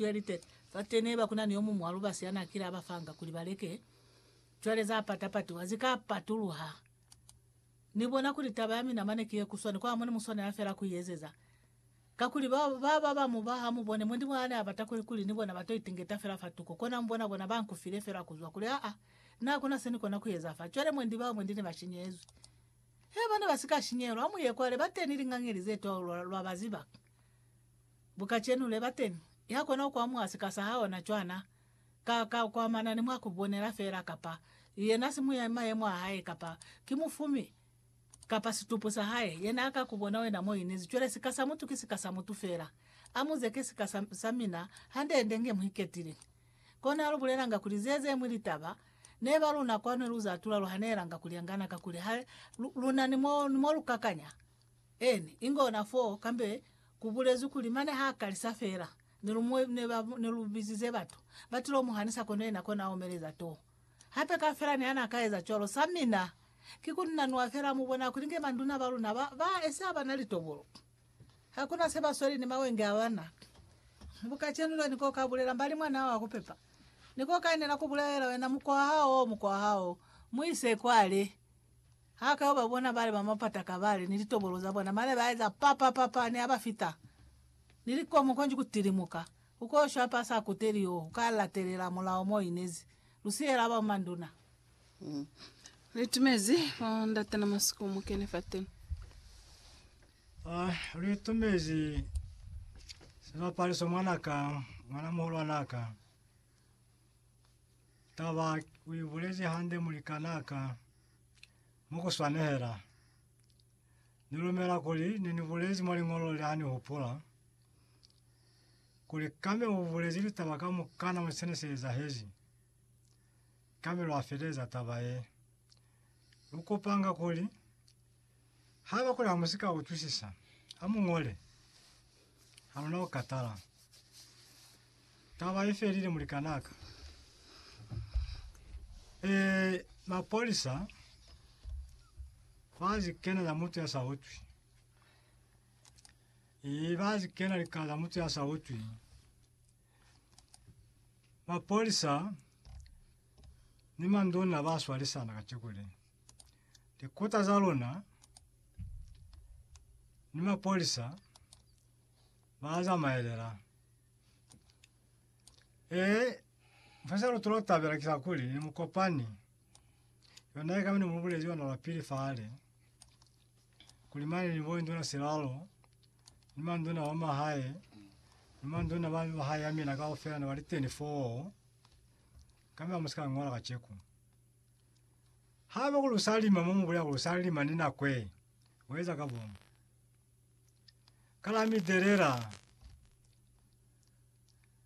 23 Fate neba kunani yomuñwi wa lubasi yanaakile abafanga kuli baleke cwale zapata-patiwa zika patuluha. Nibona kuli taba yamina mane ki yekuswani kwa mone muswanela fela kuiezeza, kakuli ba baba bamuba hamubone mwendi mwa ane abata kuli kuli ni bona bato itingeta fela fatuko, kona mubona bona bankufile fela kuzwa kuli aa nakuna senikona kueza fa. Cwale mwendi bao mwendi nebashinyezwi. Hee bana basika shinyehelwa, hamuye kwale bateni lingangeli zetwa lwa lwabaziba. Bu kacenu le ba teni. Ya kona ku amuha sika sa haona cwana, ka, ka ku amana ni mwa ku bonela fela, kapa yena simu ya mayemo a hae, kapa ki mufumi, kapa situpu sa hae, yena a ka ku bona wena mo inezi. Cwale sika sa mutu ki sika sa mutu fela. Amuze ki sika sa, sa mina, hande-hande nge mu iketile. Kona lu bulelanga kuli ze, ze mwi litaba, ne ba luna kwanu lu za tula lu hanelanga kuli angana, kakuli ha lu, lu na ni mo, ni mo lu kakanya. Eni, inge ona fo, kambe kubulezwi kuli, mane ha kalisa fela, ne lu mu, ne ba, ne lu bizize batu, batilo mu hanisa kono yena kona omeleza to. Hape kafela ne ana ka eza cwalo. Sa mina, ki kuli na nwa fela, mu bona kuli nge manduna ba luna ba, ba esi abana litobolo. Hakuna se ba sweli ni mawenge abana. Bu kacenu lwa ni ko ka bulela mbali mwana hao wa ku pepa. Ni ko ka enela ku bulelela wena, Mukwa hao, mukwa hao, mu ise kwale. Ha ka yo ba bona bale ba mapata kabale ni litobolo za bona, mane ba eza pa pa pa pa, ne a ba fita, ni likomo konji ku tilimuka. U ko shwa pa sa kuteli yo u ka latelela mulao mo inezi, lu siyela ba manduna. Li itumezi bo ndate na masiku mu kene fateni. Ah, lu itumezi sibapaliso mwana ka, mwana muhulwana ka. Taba uibulezi hande mulikanaka. Mukuswanehela, nilumela kuli nenibulezi mwa liñolo le ha nihupula kuli Kame ubulezi litaba kamukana mwa sene se ezahezi. Kame lwafeleza taba ye. Lukupanga kuli Ha ba kuli ha mu si ka utwisisa, ha mu ñole. Ha lu na ku katala. Taba i felile mulikan'a ka. Ee, mapolisa ba si kena za mutu ya sa utwi. Ee, ba si kena lika za mutu ya sa utwi. Mapolisa ni manduna ba swalisana kaciko le. Likota za luna ni mapolisa ba zamaelela. E mfasa lutolo tabela kisa kuli ni mukopani. Yona eka ni mubulezi yona la pili fale. Kuli mane ni bondi na silalo. Ni manduna wa mahae. Ni manduna ba mahae ya mina kaufela na baliteni foo. Kama musika ngola kacheku. Haiba ku lu sa lima mo mu bulela ku lu sa lima ni nako ye, u eza ka bomu. Ka la mi telela,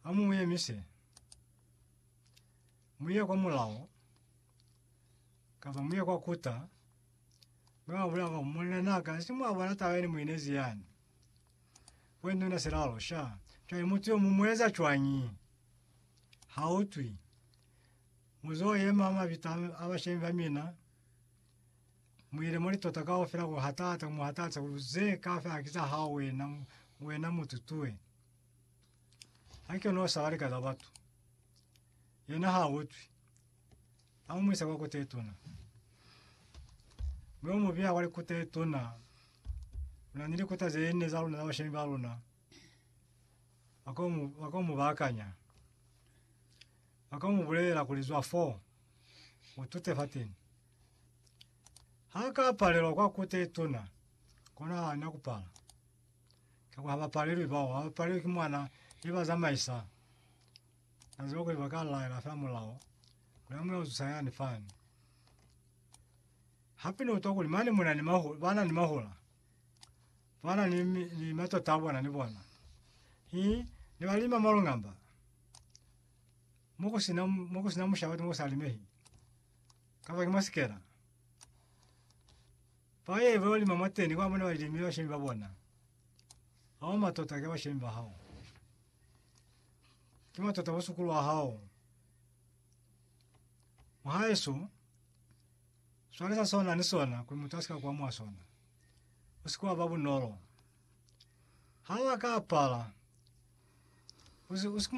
ha mu yemise, mu ye kwa mulao, kapa mu ye kwa kuta, mi wa bulela ku munnan'a ka, si mwa bona taba ye ne mu inezi yani? Kwe ni una silalo sha. Cwale mutu yo mu mu eza cwañi? Ha utwi. Muzo yema mabita a bashemi ba mina, muile muli tota kaufela ku hatata, mu hatata kuli ze kaufela ki za hao wena, wena mututue. Haike no saba lika za batu. Yena ha utwi. Amu muisa kwa kota ituna. Mwe mu biya kwa likota ituna. Una ni likota ze ne za luna za bashemi ba luna. Akomu, akomu bakanya. Ba ka mu bulelela kuli, Zwa fo, u tute fateni. Ha a ka palelwa kwa kute ye tuna, kono ha a na ku pala. Ka kwa ha ba palelwi bao, ha ba palelwi ki mwana ye ba zamaisa. Na ziba kuli ba ka laela fela mulao kuli a mu yo zusa yani fani. Hape ni utwa kuli mane mu na ni mahu, ba na ni mahula, ba na ni, ni matota a bona ni bona. Hi, ne ba lima malungamba. mo ku sina mo ku sina mushaba mo sa limehi kapa ke masikela pa ye ba lima mateni kwa mona ba limi ba shemi ba bona hao matota ke ba shemi ba hao ke matota ba sukulu wa hao mwahaeso swale sa sona ni sona ku muthu asika kwa mwa sona usikuwa ba bunolo hawa ka pala usi usikuma